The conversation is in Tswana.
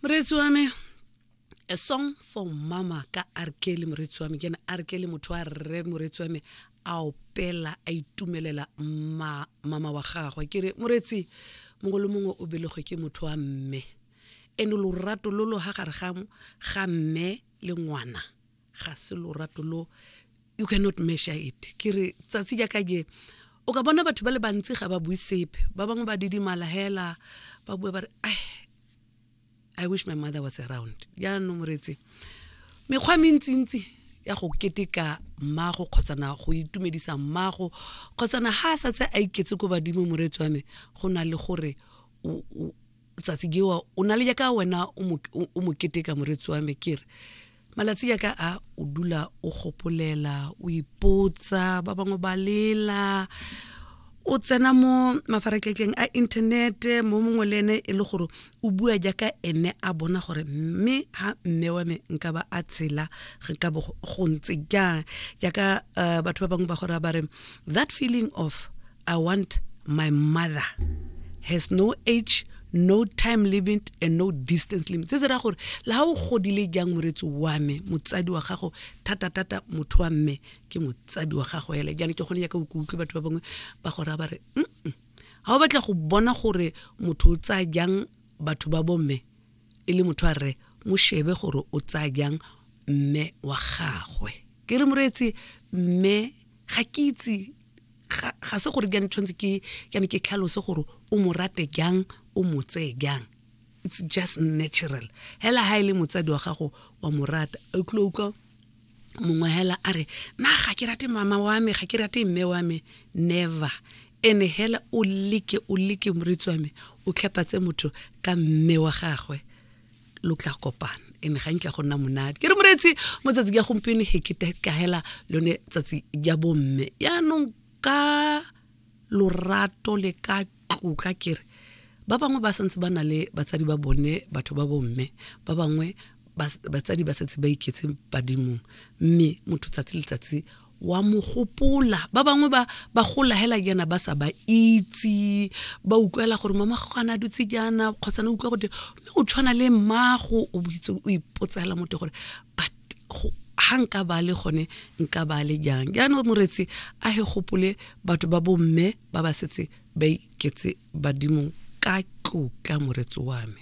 moreetsi wa me a song for mama ka arkele moreetsi wa me ke ne arkele motho wa rre moreetsi wa me a opela a itumelela ma, mama wa gagwe ke re moreetsi mongwe le mongwe o belegwe ke motho wa mme ene lorato lo lo ga gare ga mme le ngwana ga se lorato lo you cannot measure it ke re tsatsi jaaka je o ka bona batho ba le bantsi ga ba bue sepe ba bangwe ba didimala hela ba bue ba re i wish my mother was around jaanong moretse mekgwa mentsintsi ya go keteka mmago kgotsana go itumedisa mmago kgotsana ha a sa tse a iketse ko badimo moreetsi wa me go na le gore tsatsi jewa o na le jaaka wena o mo keteka moreetsi wa me kere malatsi yaka a o dula o gopolela o ipotsa ba bangwe ba lela o tsena mo mafaratlhatlheng a inthanete mo mongwe le ene e le gore o bua jaaka ene a bona gore mme ha mme wa me nka ba a tshela re ka go ntse jang jaaka eh, batho ba bangwe ba gore ba re that feeling of I want my mother has no age no time limit and no distance limit se se raya gore le ga o godile jang moretsi wa me motsadi wa gago thata-thata motho wa mme ke motsadi wa gago ele jane ke gone yaka o ke utlwe batho ba bangwe ba go raya ba re mm ga o batla go bona gore motho o tsaya jang batho ba bomme e le motho a rre mo shebe gore o tsaya jang mme wa gagwe ke re moreetsi mme ga ke itse ga se gore ke tshwanetse ke ke ke tlhalose gore o mo rate jang o mo tseye jang it's just natural hela ha ile e motsadi wa gago wa mo rata o tlo utlwa mongwe hela a re na ga ke rate mama wa me ga ke rate mme wa me never ene hela o like o like moritsi wa me o tlhapatse motho ka mme wa gagwe lo tla kopana ene ga ntla go nna monate ke re moreetsi mo tsatsi ya gompieno he ke kahela lone tsatsi ya bomme yaanong ka lorato le ka tlotla kere ba bangwe ba santse ba na le batsadi ba bone batho ba bomme ba bangwe batsadi ba setse ba iketse badimong mme motho tsatsi letsatsi wa mo gopola ba bangwe ba ba gola hela jaana ba sa ba itse ba utlwela gore mama gana dutse jaana kgotsa ne utlwa gote mme o tshwana le mmago o itse o ipotsela mote gore but ga nka ba le gone nka ba le jang jaanong moretsi a he gopole batho ba bomme ba ba setse ba iketse badimong ka tlotla moretsi wa me